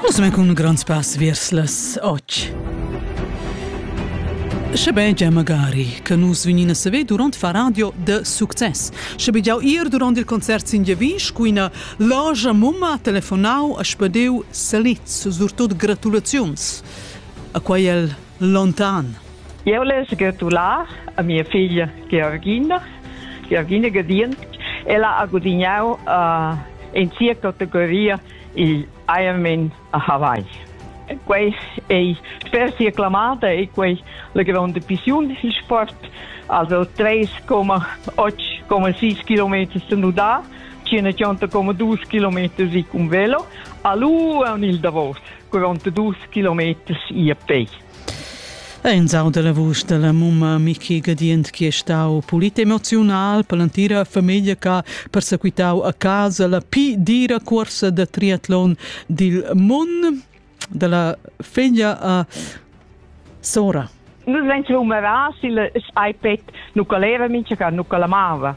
Posso men cun grands pass vers las och. Sche ben già magari che nus vegnin a saver durant far radio de success. Sche bi jau ir durant il concert sin Javisch, cu ina loja mumma telefonau a spedeu saliz, surtut gratulaziuns. A quai el lontan. Jeu less gratular a mia figlia Georgina, Georgina Gadient. Ella ha gudignau uh, in sia categoria il Ironman a Hawaii. Quei ei sper sia clamada e quei la gronda pissiun il sport, also 3,8,6 km senudar, 180,2 km si cun velo, a lu en il Davos, 42 km ia pei. E in sound della vusch della mumma Miki Gadient che è stau pulit emozional per l'entira famiglia che ha persequitau a casa la pi dira corsa da triathlon dil mund della figlia a Sora. Nus vegn numeras il spipet nu caleva mincha ca nu calamava.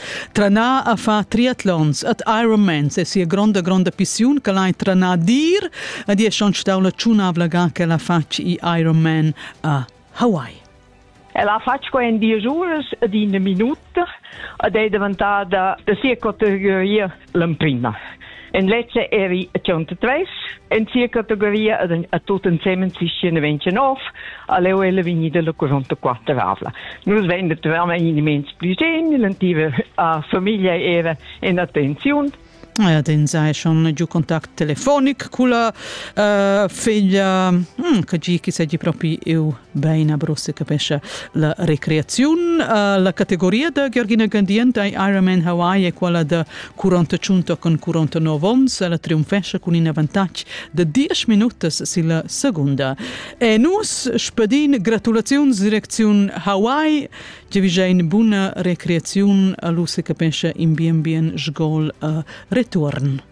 Tranar a far triatlons ad Ironmans e sia gronda gronda pissiun che l'hai tranar dir ad è schon stau la tschunavla ga che la fatg i Ironman a Hawaii. El ha fatg qua in dies uras ed in minut ed è daventada da sia categoria l'emprima. En lezza eri tschont tres, en sia categoria a tot ensemen sischien ventg nov, aleu ella vegnida la 44 avla. Nus vende veramente in mens più genil, a famiglia era in attenzione Ja, den sei schon giù kontakt telefonic culla uh, figlia hm, che gi che seggi propi eu Bein abro se capescha la recreaziun. Uh, la categoria da Georgina Gandient ei Ironman Hawaii e quella da 45 con 49 ons. Ella triumfescha cun in avantatg de 10 minutas silla segunda. E nus spedin gratulaziuns direcziun Hawaii, che vi ein buna recreaziun a lu se capescha in bien bien sgol uh, return.